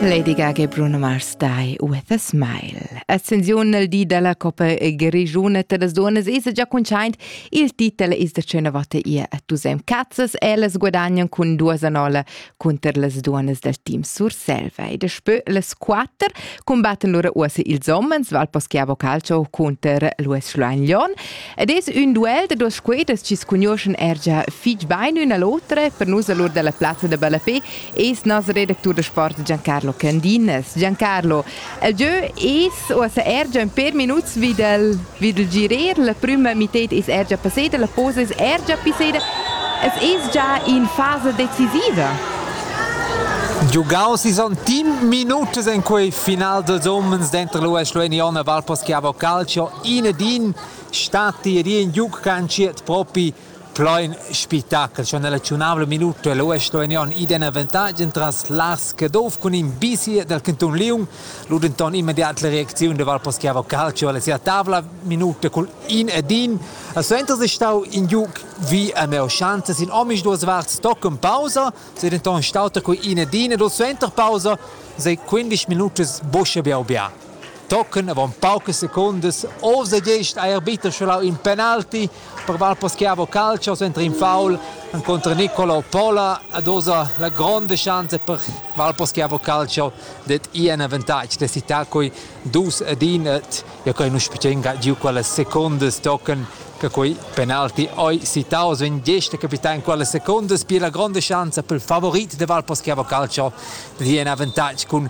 Lady Gaga e Bruno Mars Dai with a Smile. Ascensiun nel di della Coppa Grigione e das duonas is già cuntschaint il titel is da cena vote ia a Tusem Cazzas e las guadagnan cun dua zanola cunter las duonas del team Surselva e da spö las quatter combatten lura uossa ils homens Valposchiavo Calcio cunter Luis Schluein Leon Ed es ün duel da duos squetas chi scugnuoschan er già fich bain üna l'otra. Per nus allur da la plazza da ballapè es nos redactur da sport Giancarlo Candinas. Giancarlo, il giö es uossa er già ün pêr minuts vi dal vi dal girer. La prüma mited es er già passeda, la posa es er già pisseda. Es es già in fasa decisiva? Giugaus is on team minutas en quei final dos umens denter l'US Lueni Onna Valpos che ha calcio In ed in statti ed in giug canciet propi plein spitachel. Schon nella ciunav minuto la Uesto Union id en avantatg entras Lars Caduff cun in bici dal Canton Liung. Lu denton immediat la reacziun de Valposchiavo Calcio alla sia tavla minuto col in ed in. A Suenters è stau in giug vi a Meo Schanzes in omis duas varts toc in pausa, sei denton stau co in ed in ed al Suenter pausa sei 15 minutos bosche bia bia. tochen avon paucas secundas oz gest ha er bitter schalau in penalti per Valposchiavo Calcios entri in faul contro Niccolo Pola ad osa la gronda chance per Valposchiavo Calcio det in avantage da Sitacoi dus ad in et ja kai nus picenga giu quella secondas tochen che quei penalti oi sitaus in gesta capitán quella secondas pia la gronda chance per il favorit de Valposchiavo Calcio di in avantage cun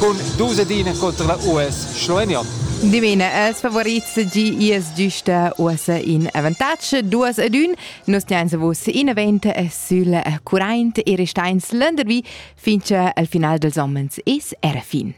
Cun dus ed ina contro la US Slovenian. Dimena els favorits gi ies giusta uossa in avantatg duas ed un. Nus tiains vus in event sul current e restains lendervi fincha al final dels homens is era fin.